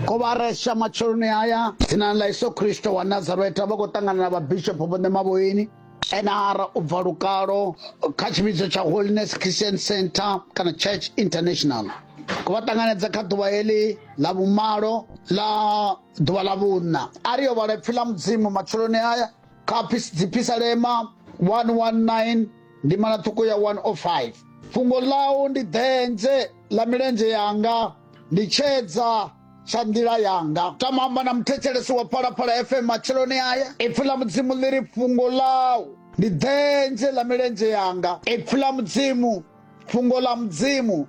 kovaresha matsheloni aya dzinani ḽa iso khristo wa nazareta vha khou ṱangana na vhabishopo vhone mavhoini nr u bva lukalo kha tshivhidzo tsha holiness christian center kana church international ku vha ṱanganedza kha ḓuvha heḽi ḽa vhumalo ḽa ḓuvha ḽa vhunna a ri yo vhala ipfi ḽa mudzimu matsheloni aya kha dzipisalema 119 Ndimana ṱhukhu ya 105 fhungo ḽau ndi ḓenze ḽa milenzhe yanga ndi tshedza tsha nḓila yanga tama amba na muthetshelesi wa phalaphala fm matsheloni aya ipfi ḽa mudzimu ḽi ri fhungo ḽau ndi ḓenze ḽa milenzhe yanga ipfi ḽa mudzimu fhungo ḽa mudzimu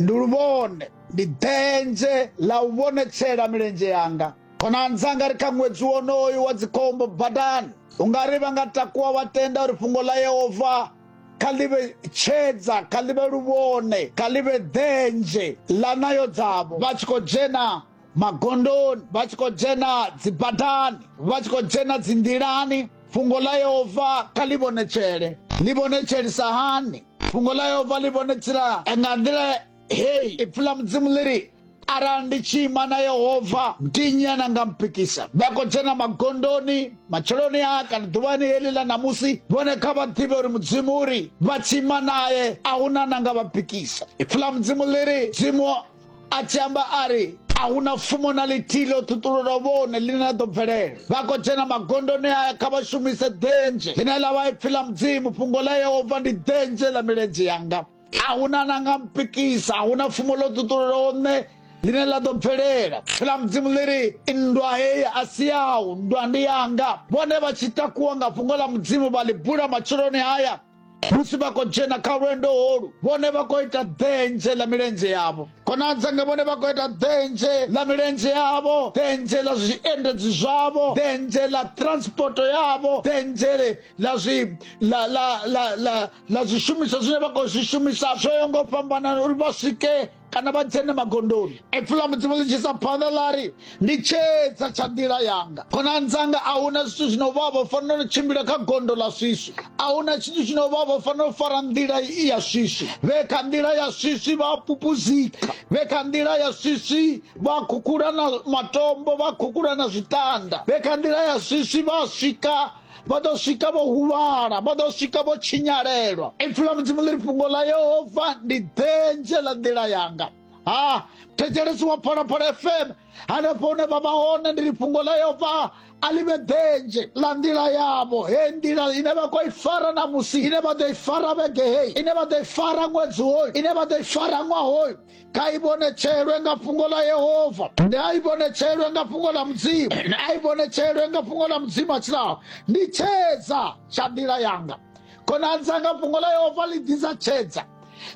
ndi luvhone ndi ḓenze ḽa u vhonetshela milenzhe yanga khonani dzanga ri kha ṅwedzi wonoyu wa dzikhombo badani u nga ri vha nga takuwa wa tenda uri fhungo ḽa yehova kha ḽi vhe tshedza kha ḽi vhe luvhone kha ḽi vhe ḓenzhe ḽa nayo dzavho vha tshi khou dzhena magondoni vha tshi khou dzhena dzibadani vha tshi khou dzhena dzinḓilani fhungo ḽa yehova kha ḽi vhonetshele ḽi vhonetshelisa hani fhungo ḽa yehova ḽi vhonetshela nga nḓila hei ipfi ḽa mudzimu ḽi ri arali ndi tshi ima na yehova ndi nnyi ane nga mpikisa vha khou dzhena magondoni matsheloni a kana ḓuvhani heḽi ḽa ṋamusi vhone kha vha ḓivhe uri mudzimu uri vha tshi ima naye a hu na na nga vha pikisa ipfi ḽa mudzimu ḽi ri mudzimu a tshi amba a ri a hu na fumo na ḽithihi ḽo ṱhuṱulula vhone ḽine ḽa ḓo bvelela vha khou dzhena magondoni aya kha vha shumise ḓenzhe ḽine ḽa vha ipfi ḽa mudzimu fhungo ḽa yehova ndi ḓenzhe ḽa milenzhe yanga a hu na na nga mpikisa a hu na pfumo ḽo ṱuṱulelaho nṋe ḽine ḽa ḓo bvelela pfhi ḽa mudzimu ḽi ri nndwa heyi a si yawu nndwa ndi yanga vhone vha tshi takuwa nga fhungo ḽa mudzimu vha ḽi bula matsheloni haya musi vha khou dzhena kha lwendo holu vhone vha khou ita ḓenzhe ḽa milenzhe yavho konadzange vhone vha khou ita ḓenzhe ḽa milenzhe yavho ḓenzhe ḽa zwiendedzi zwavho ḓenzhe ḽa transporto yavho ḓenzhe ḽa zwi la la la la na zwishumiswa zwine vha khou zwi shumisa zwo yo ngo fhambanana uri vha swike kana vha dzhene magondoni epfula mudzimu ḽi tshisa phanḓa ḽa ri ndi tshedza tsha nḓila yanga khonani dzanga a huna zwithu zwino vha vho fanela u tshimbila kha gondo ḽa swiswi a huna tshithu tshino vha vho fanela u fara nḓila i ya swiswi vhe kha nḓila ya swiswi vha pupuzika vhe kha nḓila ya swiswi vha khukhula na matombo vha khukhula na zwitanda vhe kha nḓila ya swiswi vha swika vha ḓo swika vho huvhala vha ḓo swika vho tshinyalelwa ipfi ḽa mudzimu ḽi ri fhungo ḽa yehova ndi denzhe ḽa nḓila yanga ha thetshelesi wa phalaphala fm hanefho hune vha vha hone ndi ri fhungo ḽa yehova a ḽi vhe denzhe ḽa nḓila yavho he nḓila ine vha khou i fara na musi ine vha ḓo i fara vhege heyi ine vha ḓo i fara ṅwedzi hoyu ine vha ḓo i fara ṅwaha hoyu kha i vhonetshelwe nga fhungo ḽa yehova ndi a i vhonetshelwe nga fhungo ḽa mudzimu ndi a i vhonetshelwe nga fhungo ḽa mudzimu a tshilaho ndi tshedza tsha nḓila yanga khonani dzanga fhungo ḽa yehova ḽi ḓisa tshedza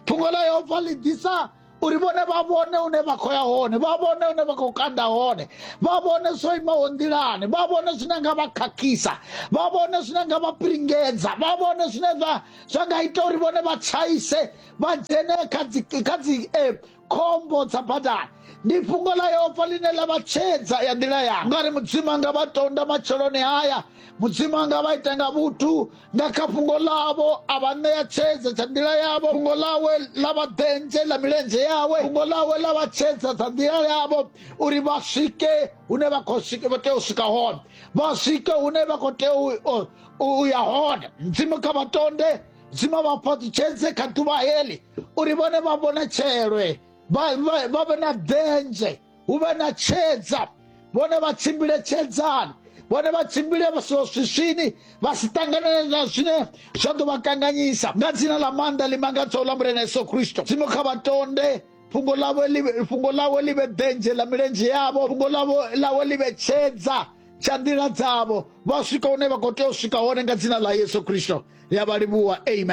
fhungo ḽa yehova ḽi ḓisa uri vhone vha vhone une vha khou ya hone vha vhone une vha khou kanda hone vha vhone zwo imaho nḓilani vha vhone zwine nga vha khakhisa vha vhone zwine nga vha piringedza vha vhone zwine zwa zwa nga ita uri vhone vha tshaise vha dzhene kha dzi kha dzi eh, khombo dza badani ndi fhungo ḽa yehova ḽine ḽa vha tshedza ya nḓila yanga ngari mudzimu anga vha tonda matsheloni haya mudzimu anga vha ita nga vhuthu nga kha fhungo ḽavho a vha ṋea tshedza tsha nḓila yavho fhungo ḽawe ḽa vha ḓendzhe ḽa milenzhe yawe fhungo ḽawe ḽa vha tshedza dza nḓila yavho uri vha swike hune vha khou swike vha tea u swika hone vha swike hune vha khou tea u- u- u ya hone mudzimu kha vha tonde zwino vha fhaṱutshedze kha ḓuvha heḽi uri vhone vha vhone tshelwe vha vhe na ḓenzhe hu vhe na tshedza vhone vha tshimbile tshedzani vhone vha tshimbile swiswini vha si ṱanganele na zwine zwa ḓo vha kanganyisa nga dzina ḽa maanḓa ḽi mangadzaho ḽa mulena yesu kristo dzimu kha vha tonde fhungo ḽawe fhungo ḽawe ḽi vhe ḓenzhe ḽa milenzhe yavho fhungo ḽawe ḽi vhe tshedza tsha nḓila dzavho vha swika hune vha khou tea u swika hone nga dzina ḽa yesu kristo ya vha livhuwa amen